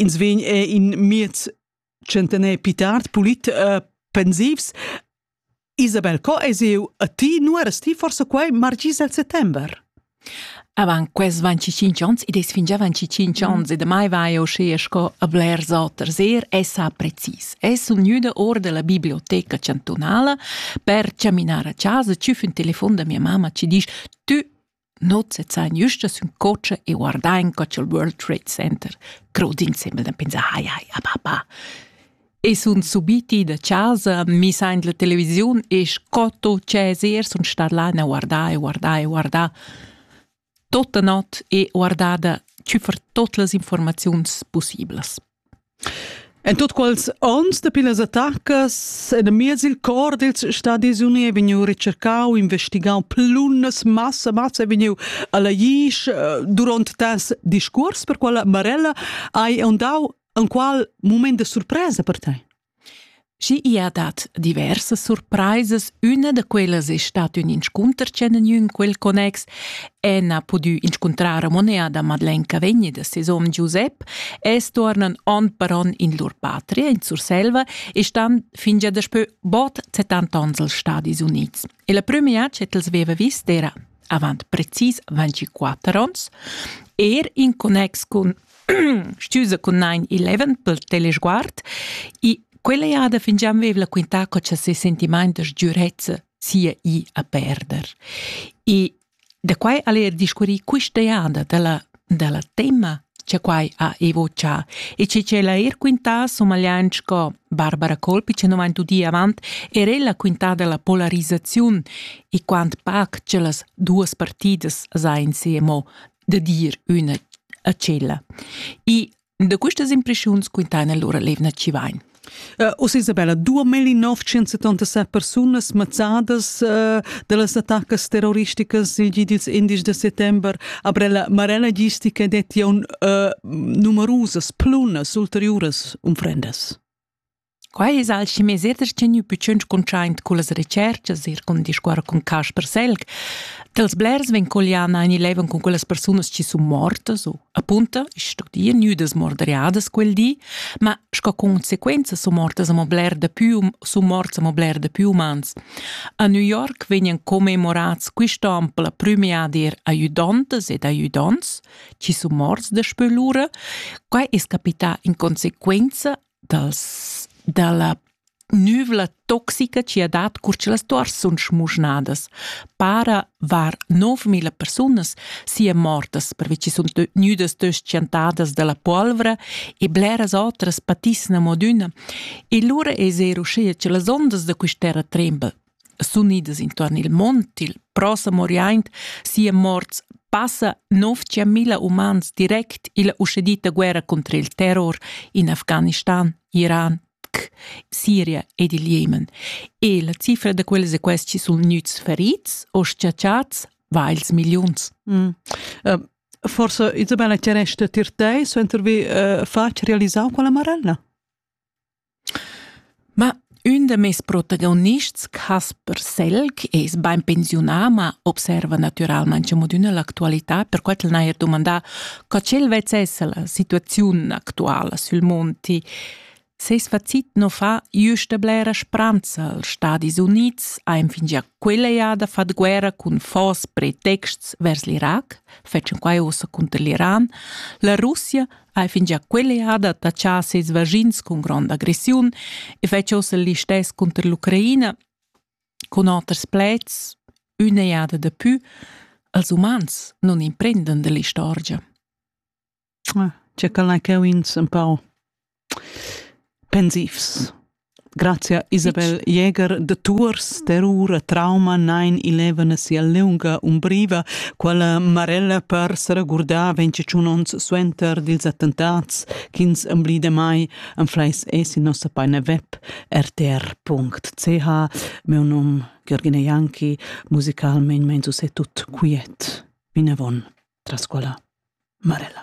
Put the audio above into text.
Ins vegn er in miez centener pli tard pulit uh, pensivs. Isabel, co es eu a ti nu eras ti forse quai margis al settember? Avant quels 25 ans, id es fingià 25 ans, mm. e damai vai eu schea sco a blers oters. Er essa precis. Es sun gnüda or da la biblioteca chantunala per chaminar a chasa, tschüf ün telefon da mia mamma, ci disch, tü Not sezzain güsta sün cocha e guardain co cha'l World Trade Center crod insembel da pensar hai hai a papà. E sun subiti da chasa, mis aint la televisiun e sco tot Cesar sun stat là a guardar e guardar e guardar tota not e guardada tü fer tot las informaziuns possiblas. En tut quels onns dapi las attacas enamiez il cor dils Stadis Uni ei vegniu recercau, investigau plunnas massa massa ei vegniu alla Jisch duront tas discuors per quella Marella hai ondau enqual mument de surpresa per tei. Schi i ha dat diversas surpraisas, üna da quellas es stat ün inscunter chi han gnü in quel connex. Anne ha pudü inscuntrar a Monea da Madeleine Cavegni da ses hom Giusep e stuornan on per on in lur patria in Surselva e stan fingia daspö bod 70 ons als Stadis Units. E la prüma jad ch'el els veva vis d'era avant precis 24 ons, er in connex cun Stüsa cun nein eleven pel telesguard e quella jada fingià vev'la quintà co cha ses sentimaint da sgürezza sia i a perder. E da quai al er discurrì quista jada da la, da la tema che quai ha evoccià e che ch'ella er quintà somagliant sco Barbara Colpi che non vain udì avant er ella quintà della polarizzaziun e quant pac che las duas partidas sain se emo da dir üna a tschella. E da questas impressiuns quintana lura Levna Civain. Uh, Oss Isabella, 2977 persunas mazzadas uh, da las attacas terroristicas il gi dils indies de settember aber la marella gistica detti un uh, numerusas plunas ulteriuras unfrendas. Quai es alchemiser tgeniu pitschens cuntschaint cullas retscherchas eir cun discuorrer cun Casper Selg. Dels blers vegn Colliana in eleven cun quellas persunas chi sun mortas o, appunto, ich studia nüdas morderiadas quel di, ma sco consequenza sun mortas amo bler da più sun morts amo bler da più umans. A New York vegnan commemorats quist'on per la prüma dir aiudantas ed aiudants chi sun morts daspö lura. Quai es capità in consequenza dals, dalla nüvla toxica chi ha dat cur cha las tuors sun schmuschnadas. Para var 9000 persunas sia mortas pervi chi sun gnüdas tschentadas dalla polvra e bleras otras patissan amo adüna. E lura es eir uschea cha las ondas da quist'erra tremba s'unidas intuorn il mont il prossem oriaint sia morts passa 9000 umans direct illa uschedita guerra contra il terror in Afghanistan, Iran, Siria ed il Jemen. E la cifra da quels e questi sun gnüts ferits o schiacciats vails milliuns. Mm. Uh, forse Isabella Ceresta Tirtei suenter vi uh, fatg realisar quella marella? Ma ün da meis protagonists, Casper Selg, es bain pensiunà, ma observa natüralmaing amo d'üna l'actualità, perquai ch'el n'haja dumandà co ch'el vezzessa la situaziun actuala sül monti. Seis facit nu fa güsta blera spranza als Stadis Units, aint fingià quella jada fat guerra cun fos pretexts vers l'Irac, fetschan quai uossa cunter l'Iran. La Russia hai fingià quell'eada tachà ses vaschins cun gronda aggressiun e fetsch ossa listess cunter l'Ucraina cun oters pleds üna eada da pü als umans non imprenden dell'istorgia. Ah, c'è quella che ins un pau pensivs. Grazia Isabel Jäger da Tuors terrur e trauma nain ilevana sia leunga umbriva, quella marella per se regurdar 25 ons suenter dils attentats ch'ins emblide mai en fleis es in nossa paina web rtr.ch. Meu nom Gergine Janki, musicalmein mein so se tut quiet. Vinavon tras quella marella.